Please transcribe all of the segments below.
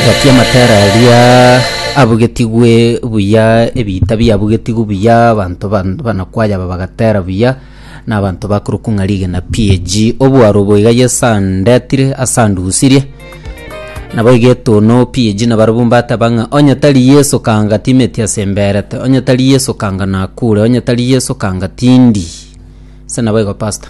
Gati amatera aria abugetigwe buya, ebiita biabugetigwe buya, abanto ban- banakwaya aba bagatera buya, na abanto bakorokwa ng'a rigena PAG. Obwaro obo iga Yeso andetire ase andusirie, nabo iga etono PAG na barabwo mbateba ng'a onye tari Yeso kanga timeti ase mberete, onye tari Yeso kanga nakure, onye tari Yeso kanga tindi. Ase naboigo pastor.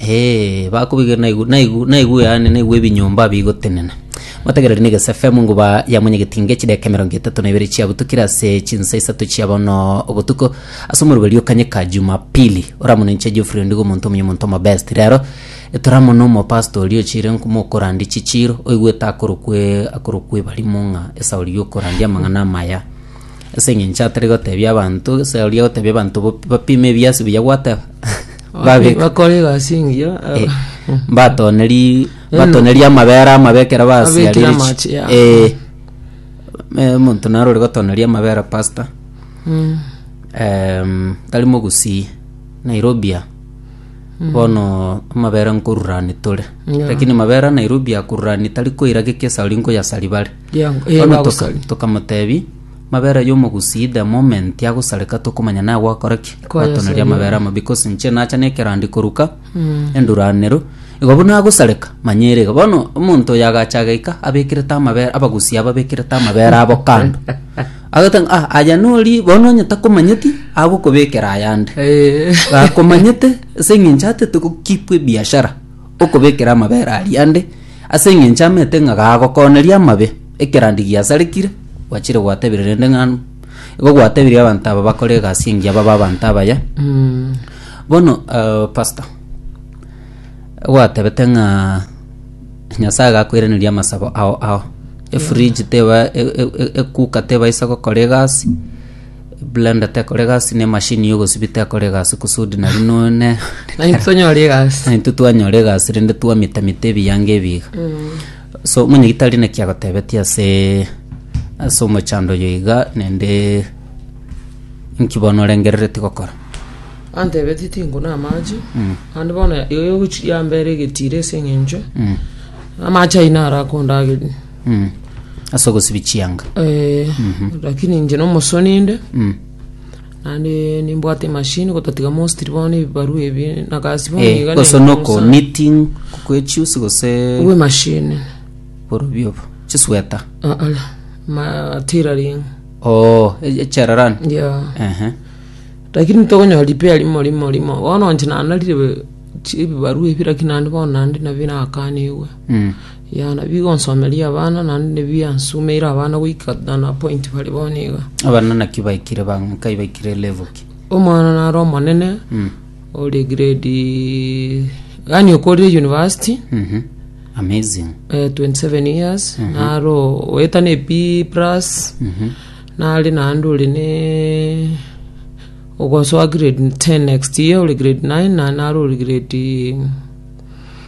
Ee, bakobigerera naigu- naigu- naigue yaani naigue ebinyomba bigotenena. Motegereri negese FM nguba ya mwenyegetinge chideka emerongo etato na ibere chiabutukire ase chinsa isato chia bono obotuko ase omoruberi o kanyeka Jumapili. Oramonenche Geoffrey Ondigo omonto omuya omonto omobest. Rero etoramo na omopastor oria ochire nkumo okorandia chichiiro oigwete akorokwe akorokwe ebarimo ng'a esauri y'okorandia amang'ana amaya. Ase eng'encho atari gotebia abanto esauri agotebia abanto bo- bapime ebiasi buya gwateba. Babeka. bakora egasi engiya Eh, mbatoneri mbatoneri amabere amabe ekero Abekire basiarire chi- amache yabo. eh, eh, omonto naro ore gotoneria amabere pastor Mm. Em, tari mogusii nairobi a bono amabere nkorurani tore Yeah. lakini mabere a nairobi akorurani tari koira geke esari nkoyasari bare Yeah, eh, Bono toka- bagosari. tokamotebi Mabera y'omogusii the moment agosareka tokomanya nagwakora ki gwatoneria amabera amo because nche nacha nekerandi koruka enduranero igo buna agosareka manyere iga bono omonto oyo agacha agaika abekerete amabera abagusii aba bekerete amabera abo kando agoteba ng'a, ah aya nori bono onye takomanyeti agokobekera ayande akomanyete ase eng'encho atete go keep ebiashara okobekera amabera aria ande, ase engencho amete ng'a gagokoneria amabe, ekerandi giasarekire, gwachire gwatebirie rende ng'a igo gwatebirie abanto aba bakore egasi engiya babe abanto abaya. Bono eh, pastor, gwatebete ng'a Nyasae gakoiraneria amasabo ao ao, efridge teba e- e- e- ekuka tebaisa gokora egasi, blender tekora egasi na emashini ya ogosibi tekora egasi kusudi nari none Naintwe tonyore egasi. naintwe twanyora egasi rende twamitamita ebianga ebi iga so omonyagitari naki agotebetie ase ase omochando oyo iga naende nki bono orengereretie gokora Antebetie tinkune amache, naende bono egochi yambera egetiro ase eng'encho amache ayio naro akondageria. Mm. Ase ogosibia chianga. Eh, lakini inche nomosoni inde Mm. naende nimbwate emashini gotatiga mostri bono ebibarua ebi nagasi bono Eh, iga gose neng'osa. noko knitting kwechiusi gose Owe mashini borobio obo. Chisweta. Ah, ah, ma tailoring Oh, e- echerarani. yeah Ehe. lakini tokonyora repair rimo rimo rimo bono inche nanarire chi- ebibarua ebi lakini naende bono naende nabio nakanigwe Mm. Yaani bigonsomeria abana naende nebiansumeire abana goika to the point bari bono iga. Abana naki baikire bang nkai baikire level ki? Omwana nare omonene Mm. ore grade yaani okorire university Mhm. Amazing. eh, 27 years nare o- oeta ne B plus Mhm. nare naende ore ne ogosoa grade 10 next year ore grade 9 na nare ore grade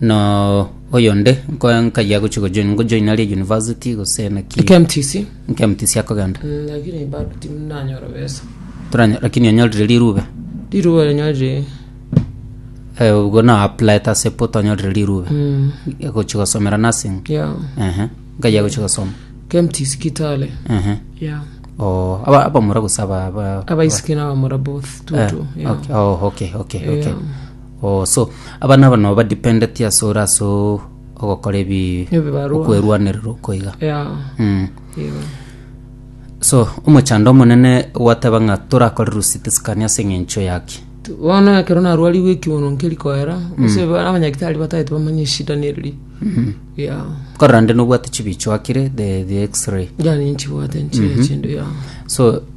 Na oyonde nkoe nkaye agochie gojoin ngojoina ria university gose naki KMTC nke mtc akogenda mm, lakini bado timu nanyora besa toranya lakini onyorire rirube riruo renyorire eh, ubwo na apply tase poto onyorire rirube mm, gochia gosomera nursing yeah ehe nkaye agochia gosoma KMTC Kitale ehe yeah oh aba abamura gose aba aba- abaisiki nabamura both Eh, tutu yeah okay. Oh, okay, okay, okay. Yeah. Oh so abana aba nabo badependeti ase ore ase o- ogokora ebi Ebibarwa. okwerwanerera okoiga Yeah. Mm. Igo. so omochando omonene gwateba ng'a torakore rusiti sikani ase eng'encho yaki Tu- bono ekero narwarigwe ekiuno nkeri koera ase ba- abanyagitari batagete bamanye eshida neriri ya korora nde nobwate chibicho akire the, the x-ray yani nchibwate nchire chindu ya so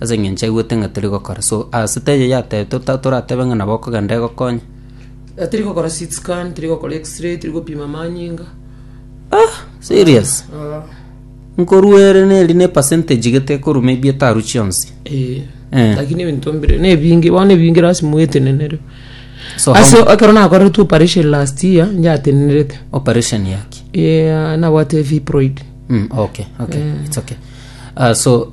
ase engencho aigwete ng'a tori gokora. So ase taiyo yatebetwe ta- toratebe ng'a nabo okogenda egokonye. Eh, tiri gokora CT scan, tiri gokora x-ray, tiri gopima manyinga. Serious? Ah, Nkorwa ere neri ne percentage gete ekorwa maybe etaru chionsi. eh. Eh. Lakini ebinto mbire, nebinge, bono ebinge lasima oetenenere. So how- Ase ekero nakoretwe operation last year, yatenenerete. operation yaki. Eh, nabwate fibroid. Mm, okay, okay. It's okay. Ah, so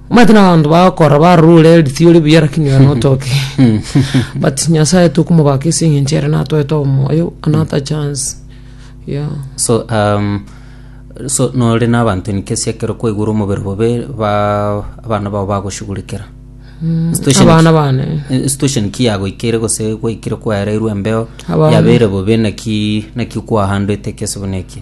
Omanyete na abanto bagokora barure erisi ore buya lakini ore notoke but nyasaye tokomobaka ase eng'encho ere natoete omoyo another chance yeah. so um, so nore na abanto nikesi ekero kwaigure omobere bobe ba abana bao bagoshugurikera Situation ki- abana bane eh, situation ki yagoikeire gose gwaikire kwaereirwe embeo Abana. yabeire bobe naki naki kwahandete ekesibo neki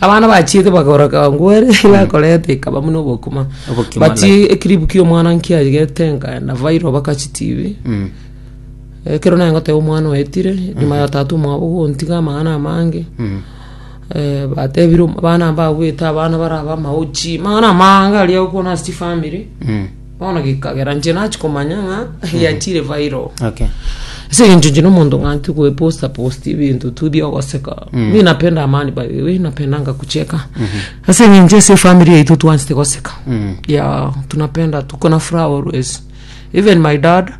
abana bachiete bakoroka ngwere bakoreta ikaba buna obokima Obokima, but like. ekiribu kia omwana nkiarigete nkaenda viral baka chitibi Mm. ekero naye ngoteba omwana oetire nyuma ya tata omwabo gontiga amang'ana amange Mm. eh, batebire om- abana mbabwete abana baraba amaochi mang'ana amange aria okwana ase chifamiri Mm. bono gekagera nche nachi komanya ng'a yachire viral Okay. ase eng'encho nche nomonto ng'anti gweposta posti ebinto tu bia ogoseka mi napenda amani by the way napendanga kucheka ase eng'encho ase efamiri yaito twansete goseka Mm. ya tunapenda tuko na furaha always even my dad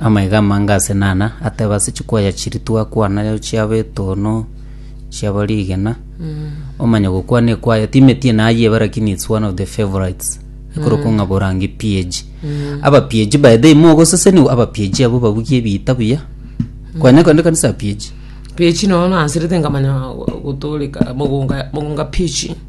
Amaiga amange ase nana ateba ase chikoya chiria twakwana chiabo etono, chiabo rigena. Omanye gokwana ekwaya timeti ene aye ebe lakini it's one of the favorites. Ekorokwa ng'a borange PAG. Aba PAG by the way mogoseseniwa aba PAG abwo babugia ebiita buya. Kwanya kende ekanisa ya PAG. Pichi nono nanserete nkamanya gotoreka mogonga mogonga pichi.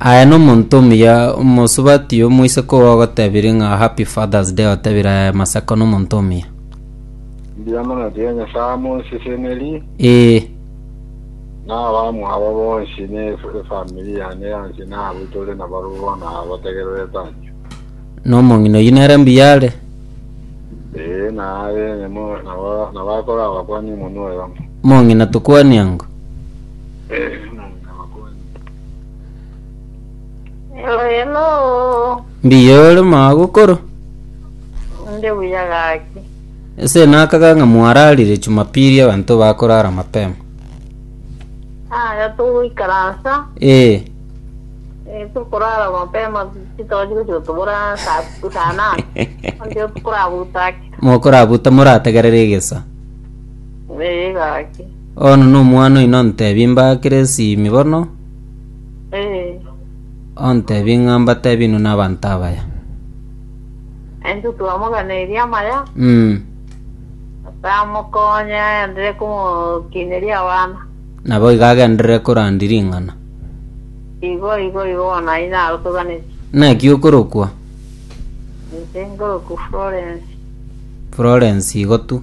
Aye no monto omuya omosubati omoiseke ogo ogotebire ng'a happy father's day otebire aye masako no monto omuya. Mbuya mono tiga Nyasae amonseseneri Ee. na abamwabo bonsi na ef- efamiri yane yonsi na abwo tore nabo bono abategererete anche. No mong'ina oyio nere mbuya are. Ee, na abe nyemo nabo nabo akore abakwa nimonwa oyomo. Mong'ina tokwania ng'o? Ee, Hello, hello. mbuya ore magokoro Nde buya gaki. ase nakaga ng'a mwararire jumapili abanto bakorara mapema Aya tugoikaransa. ee Eh, tukorara mapema titochi gochia tubura saa saa nane. Ndio tukorabutaki. mokorabuta morategerere egesa Eh, gaki. Bono nomwana oino ontebi mbaakere esimi bono, Eh, ontebi ng'a mbatebi inwe nabanto abaya. ento twamoganeiri amaya, Mm. tamokonya aenderere komokineria abana. Nabo iga agenderere korandia ring'ana. Igo, igo, igo bono ayio narotoganeti. Naki okorokwa Inche nkoroku Florence. Florence igo tu.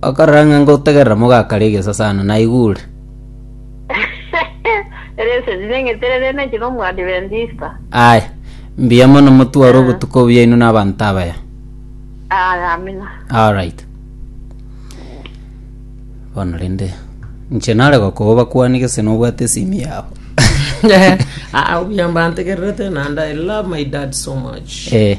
Okarora ng'a ngotegerera mogakare egesasano, naigure. Ere esegi neng'eterere neche n'Omoadventista. Aye, mbuya mono motware obotuko obuya inwe n'abanto abaya. Aye, amina. Alright. Bono rende nche nare gokoa bakwani gese nobwate esimi yabo. Ah, obuya mbantegererete nanda I love my dad so much. Eh.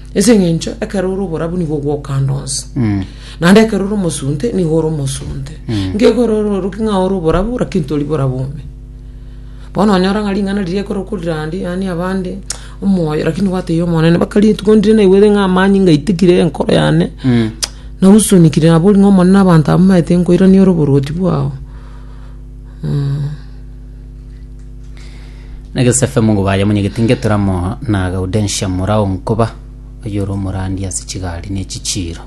Ase eng'encho ekero ore oborabu nigo ogokanda onsi, naende ekero ore omosunte nigo ore omosunte. Ngekore ororoki ng'a ore oborabu lakini tori borabu ime. Bono onyora ng'a ring'ana riria ekero okorirandie yaani abande omoyo lakini gwatebia Omonene mpaka rituko ndire naigwete ng'a amani ngaitikire enkoro yane nausunikire nabo ori ng'a Omonene abanto aba mbaete nkoirania ore oborwoti bwao. Na Yosefe mogoba aye monyegete Ngeturamo na Gaudensia mora o nkoba, oyore omorandi ase chigari ne chichiiro.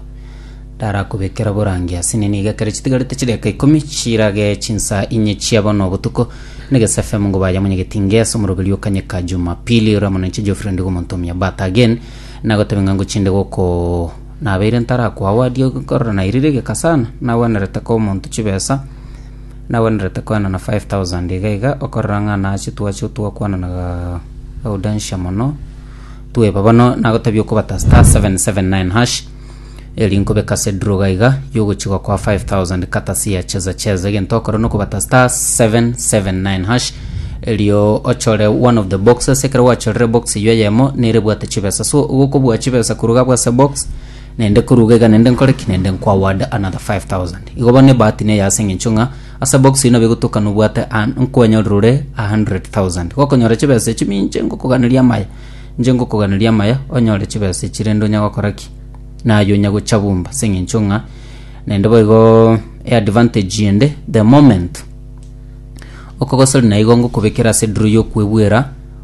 Ndarakobekera oborangi ase nini iga ekero chitigarete chideka ikomi chirage chinsa inye chia bono obotuko, na Yosefe mogoba aye monyegete Ngeasa omoroberi o Kanyeka Jumapili, ore amo nainche Geoffrey Ndigo omonto omuya But again, nagotebe ng'a ngochinde goko nabeire ntarakoawadia korora nairire egeka sana, nagwenerete koa omonto chibesa, Nagwenerete koenana five thousand iga iga okorora ng'a nache twache twakwananaga Audentia mono tweba bono nagotebi okobata star seven seven nine hash eri nkobeka ase draw iga iga yogochi gokoa five thousand kata siya cheza cheza egento okore na okobata star seven seven nine hash erio ochore one of the boxes ekero gwachorire ebox eywo eyemo nere ebwate chibesa so igo okobua chibesa korwa iga abwo ase ebox Naende koruga iga naende nkore ki? Naende nkoaward another 5,000. Igo bono ebahati neye ase eng'encho ng'a asa box eye nabo egotoka nobwate a- nkwanyorera ore a 100,000. Gokonyora chibesa echio minche ngokoganeria amaya. Inche ngokoganeria amaya onyore chibesa echio rende onya gokora ki? Naye onya gocha bumba ase eng'encho ng'a naende boigo eadvantage ende the moment okogosori naigo ngokobekera ase draw yokwebwera